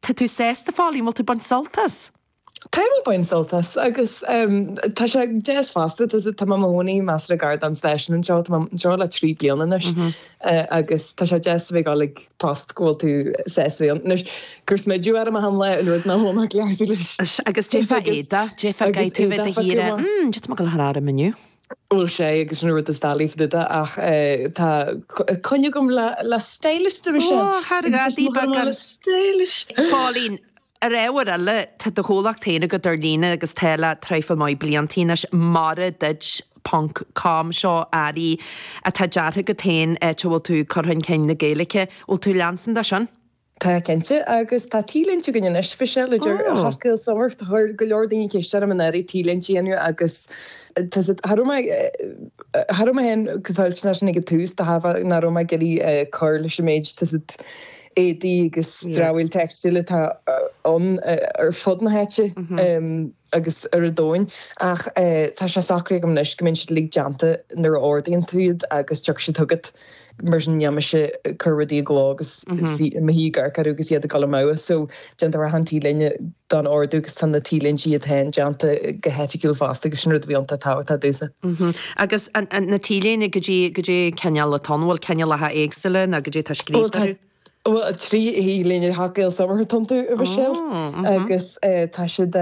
Tá tú sásta, Phóilín, bhfuil tú baint sultas? Tá mé baint sult as agus tá sé deas fosta, tá mé i mo chónaí measartha gar don stáisiún anseo, tá mé anseo le trí bliana anois agus tá sé deas a bheith ag dul ag post go bhfuil tú sásta bheith ann. Anois, cur smideadh orm achan lá, sin rud nach raibh mé cleachta leis. Agus déarfá Aodha, déarfá Gae, taobh amuigh de thíre, mm, déarfá mé go leor orm inniu. Bhuel, sea, agus an rud is dall iomh duda, ach tá coinne agam le stylist, a Mhichelle. Ó, thairg a' díbeartha gan stylist! Phóilín, ar ábhar eile, tá do chomhlacht féin agat ar líne agus tá le traidhfil mhaith blianta anois, Mar a Dúirt ponc com, seo earraí atá deartha agat féin, áit a bhfuil tú ag cur chun cinn na Gaeilge. Bhfuil tú leanstan de sin? Tá cinnte, agus tá T-léinte againn anois, Mhichelle, idir hot girl summer, tá go leor daoine ag ceist orm an oiread T-léinte a dhéanamh agus tá's agat, cha raibh mé, cha raibh mé féin go toilteanach leis sin ag an tús, de thairbhe nach raibh mé ag iarraidh cur leis an méid, tá's agat, éadaí agus dramhaíl teicstíle atá ann ar fud na háite. agus ar an domhan. Ach tá sé socraithe agam anois go mbíonn siad uilig déanta nuair a ordaíonn tú iad agus tiocfaidh siad chugat. Mar sin níl mise cur rudaí i gcló agus suí i mo shuí ag amharc orthu agus iad ag dul amugha. So déantar achan T-léine don ordú agus tá na T-léintí iad féin déanta go heiticiúil fosta agus sin rud a bhí iontach tábhachtach domhsa. Agus na T-léine, goidé an cineál atá ann? An bhfuil cineálacha éagsúla ann agus goidé atá scríofa orthu? Bhuel, trí T-léine hot girl summer atá iontu, a Mhichelle, agus tá siad,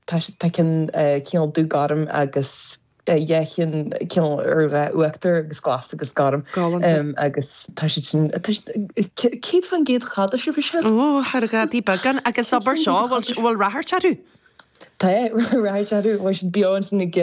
tá siad, tá ceann cineál dúghorm agus dhá cheann cineál ar dhath uachtar agus glas agus gorm. Galánta. Agus tá siad sin, tá siad, céad faoin gcéad cadás, a Mhichelle. Ó, thar a gadaí beagán. Agus abair seo, bhfuil, bhfuil ráchairt orthu? Tá é, rachaidh sé thart, chuaigh siad beo ansin ag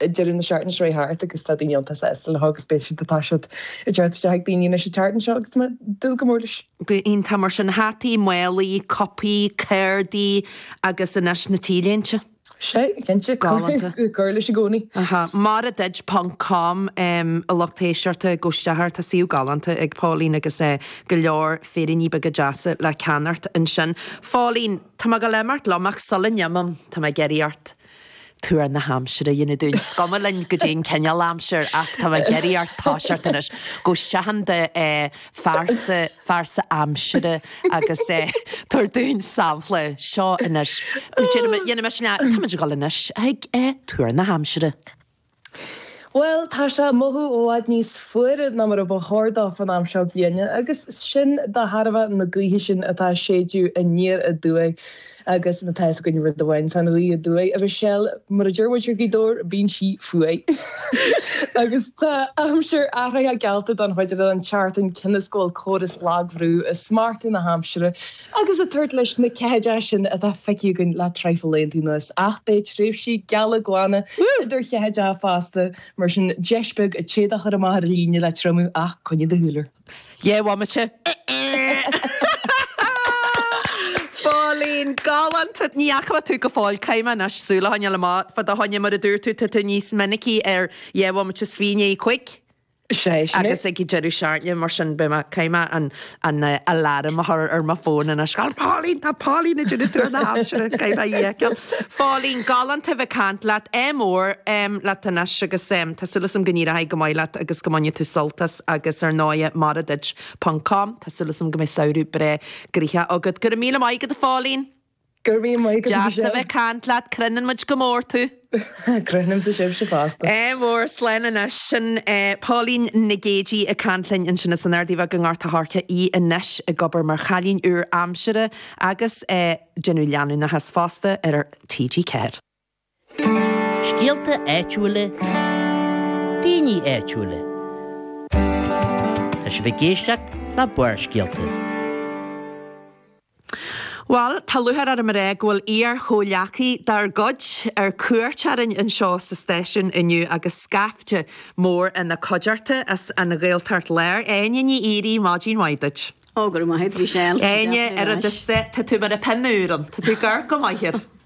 deireadh na seachtaine seo chuaigh thart agus tá daoine iontach sásta leo agus beidh siad, tá siad ag teacht isteach ag daoine anois an tseachtain seo agus tá mé ag dúil go mór leis. Go iontach mar sin, hataí, málaí, cupaí, cártaí agus anois na T-léinte. Sea, cinnte, Galánta. Ag cur leis i gcónaí. Aha, Mar a Dúirt ponc com, a lucht éisteachta gabh isteach air, tá suíomh galánta ag Póilín agus go leor féiríní beaga deasa le ceannacht ansin. Póilín. Tá mé ag dul a imeacht liom, ach sula ndéanaim, tá mé ag iarraidh ort tuar na haimsire a dhéanamh dúinn. Is cuma linn goidé an cineál aimsir, ach tá mé ag iarraidh ort toiseacht anois. Gabh isteach in do phearsa phearsa aimsire agus tabhair dúinn sampla. Seo anois. Déanfaidh mé sin. Táimid ag dul anois chuig tuar na haimsire. Bhuel, tá sé mothú i bhfad níos fuaire ná mar a ba chóir dó fán am seo bliana, agus sin de thairbhe na gaoithe sin atá ag séideadh aniar aduaidh, agus má tá fhios againn rud amháin fán ghaoth aduaidh, a Mhichelle, mar a deir muid i nGaoth Dobhair, bíonn sí fuar! Agus tá aimsir athraithe geallta don chuid eile den tseachtain, cionn is go bhfuil córas lagbhrú ag smachtú na haimsire. agus ag tabhairt leis na ceathaideacha sin atá feicthe againn le traidhfil laethantaí anuas, ach beidh tréimhsí geala glana idir cheathaideacha fosta, mar sin, deis beag an t-éadach a chur amach ar líne le triomú, ach coinnigh do shúil air. Dhá bhomaite. Pauline, galánta! Ní fhaca mé thú go fóill, caithfidh mé anois, súil a choinneáil amach, fá do choinne, mar a dúirt tú, tá tú níos minicí ar dhá bhomaite i ndiaidh a cúig. Is é sin é. Agus ag deireadh seachtaine, mar sin, beidh mé, caithfidh mé an, an eh, aláram a chur ar mo fón anois. Tá Pauline, tá Pauline ag déanamh tuar na haimsire, caithfidh mé í a fheiceáil. Pauline, galánta a bheith ag caint leat, ádh mór, em, leat anois agus, em, tá súil agam go n-éireoidh go maith leat agus go mbainfidh tú sult as agus ar ndóighe, mar a dúirt, ponc, com, tá súil agam go mbeidh samhradh breá gnoitheach agat. Go raibh míle maith agat, a Phauline! Go raibh míle maith agat, Michelle. Deas a bheith ag caint leat, cronaíonn muid go mór thú. Cronaímse sibhse fosta. Ádh mór, slán anois. Sin Pauline Nic Géidigh ag caint linn ansin as an Ardaidh Bheag i nGort an Choirce, í anois ag obair mar chailín úr aimsire agus ag déanamh leanúnachas fosta ar TG4. Scéalta áitiúila, daoine áitiúila. Tá sibh ag éisteacht le Barrscéalta. Bhal, tá lúcháir orm a rá go bhfuil iar-chomhghleacaí dár gcuid ar cuairt orainn anseo sa stáisiún inniu agus scaifte mór ina cuideachta as an Ghaeltacht Láir, Áine Ní Dhíoraí, maidin mhaith duit. Ó, go raibh maith agat, a Mhichelle. Áine, oiread is tá tú mar a bheadh pingin úr ann, tá tú ag amharc go maith air.